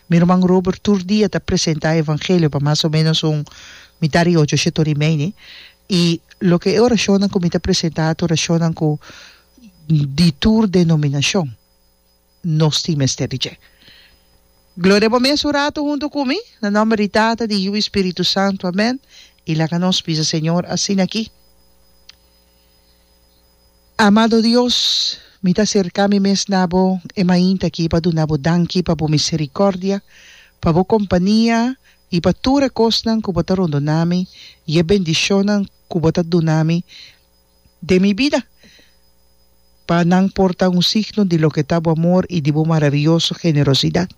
Mi Ruman Robert tur dia ta presenta e Evangelio pa mas o menos un mita di ocho sheto di meini i loke e orashonnan ku mi ta presenta ta orashonnan ku di tur denominashon nos tin mester di dje. Gloria bo mes un ratu huntu ku mi, na nòmber di Tata, di Yiu i Spiritu Santu. Amèn. I laga nos bisa Señor asina aki. Amado Dios, mi ta serká mi mes na bo e mainta akí pa duna bo danki pa bo miserikòrdia, pa bo kompania i pa tur e kosnan ku bo ta rondoná mi i e bendishonnan ku bo ta duna mi den mi bida, pa nan por ta un signo di loke ta bo amor i di bo maravioso generosidat.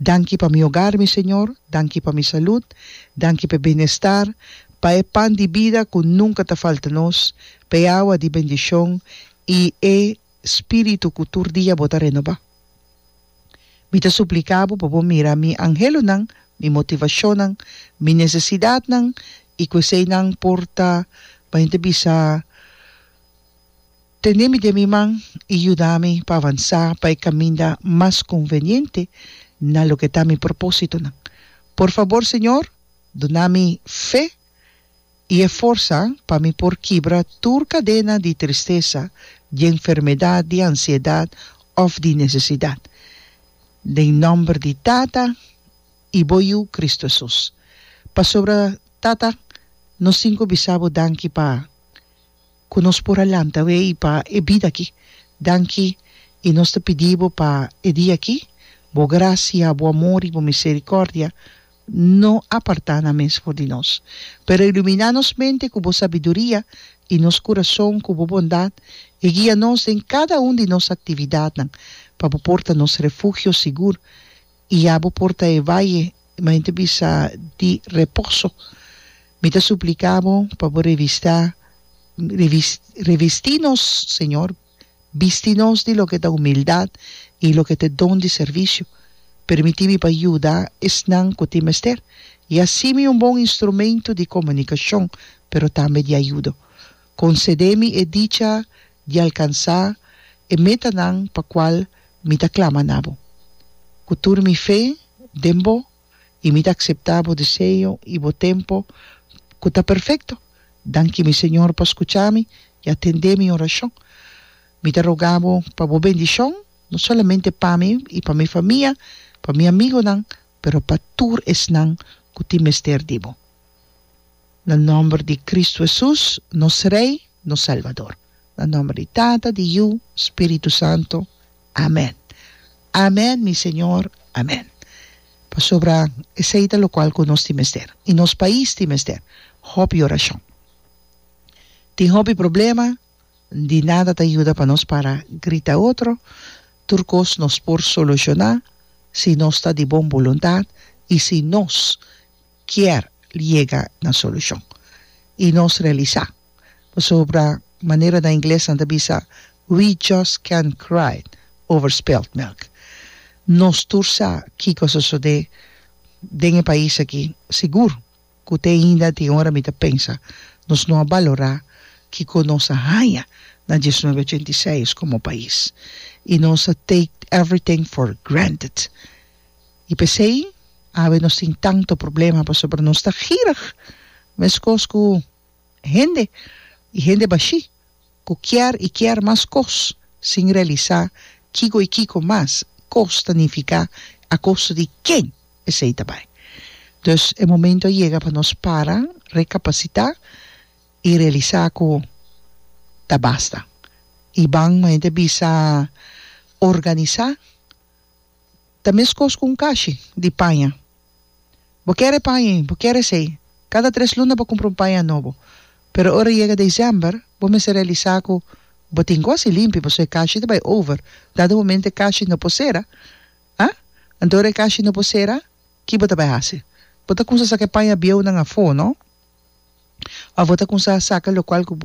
Danki pa mi ogar, mi Señor, danki pa mi salud, danki p'e bienestar, pa e pan di bida cu nunca ta falta nos, p'e awa di bendicion y e Spiritu cu tur dia bo ta renoba. Mi ta suplica bo pa bo mira mi angelonan, mi motivacionnan, mi necesidadnan y cu eseynan por ta, bay ta bisa, Tene mi den mi man i yuda mi pa avansá pa e kaminda mas konveniente na loke ta mi propósitonan. Por fabor, Señor, duna mi fe i e forsa pa mi por kibra tur kadena di tristesa, di enfermedat, di ansiedat òf di nesesidat. Den nòmber di Tata i bo Yu, Kristu Hesus. Pasobra, Tata, nos tin ku bisa bo danki pa cu nos por a lanta awey pa e bida aki. Danki y nos ta pidi Bo pa e dia aki, Bo gracia, Bo amor y Bo misericordia no aparta nan mes for di nos, pero ilumina nos mente cu Bo sabiduria y nos curason cu Bo bondad y guia nos den cada un di nos actividadnan pa Bo por ta nos refugio sigur. I ya bo por ta e vaye, ma henter bisa, di reposo. Mi ta supliká bo pa bo revistá, revis, revestí nos, Señor, bisti nos di loke ta humildat i loke ta e don di servisio. Permití mi pa yuda esnan ku tin mester, i así mi un bon instrumentu di komunikashon, pero tambe di ayudo. Concedé mi e dicha di alcansá e metanan pa cual mi ta clama na bo, cu tur mi fe den bo, y mi ta aceptá bo deseo y bo tempo cu ta perfecto. Danki mi Señor pa scuchá mi y atendé mi oracion. Mi ta rogá bo pa bo bendicion, no solamente pa mi y pa mi famia, pa mi amigonan, pero pa tur esnan cu tin mester di bo. Na nòmber di Kristu Hesus, nos Rei, nos Salbador. Na nòmber di Tata, di Yu, Spiritu Santu. Amèn. Amèn, mi Señor. Amèn. Pasobra esei ta lokual ku nos tin mester, i nos pais tin mester hopi orashon. Tin hopi problema, di nada ta yuda pa nos para grita otro, tur kos nos por solushoná si nos ta di bon boluntat i si nos. kier yega na solushon i nos realisá pasobra manera na ingles nan ta bisa we just can't cry over spilt milk nos tur sa kiko a sosodé den e pais aki sigur ku te ainda tin ora mi ta pensa nos no a balorá kiko nos a haña na dies nuebe ochenta i seis komo pais i nos a take everything for granted. I p'esei awe nos tin tantu problema pasobra nos ta girig meskos ku hende, i hende bashí ku kier i kier mas kos sin realisá kiko i kiko mas kos ta nifiká a kosto di ken esei ta bai. Dus e momentu a yega pa nos para, rekapasitá i realisá ku ta basta. I ban momente a bisa organisá. Ta meskos ku un kashi di paña. Bo kere e paña ei, bo kere esei. Kada tres luna bo kumpra un paña nobo. Pero ora yega desèmber, bo mester realisá ku bo tin ku hasi limpi pasobra e kashi ta bai over. Dado momento e kashi no por sera, a? Anto ora e kashi no por sera, ki bo ta bai hasi? Bo ta kumsa saka e paña bieunan afó, no? Òf bo ta kumsa saka lokual ku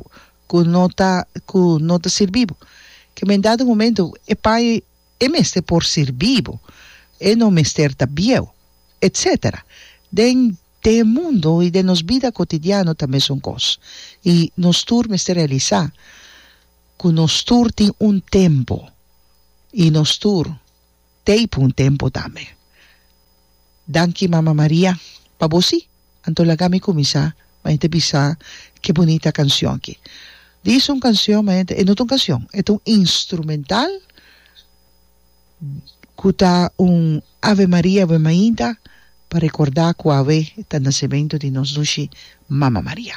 ku no ta ku no ta sirbi bo. Ke men dado momento e paña ei. E mester por sirbi bo. E no mester ta bieu, etc. Den den e mundo i den nos bida kotidiano ta mesun kos. I nos tur mester realisá ku nos tur tin un tempu i nos tur teipo un tempu tambe. Danki Mama Maria pa bo sí. Anto laga mi kuminsá pa e ta bisa ke bunita kanshon aki. Dis un kanshon maente e no ta un kanshon e ta un instrumental ku ta un Ave Maria ave mainta pa rekordá ku awe ta nasementu di nos Nushi Mama Maria.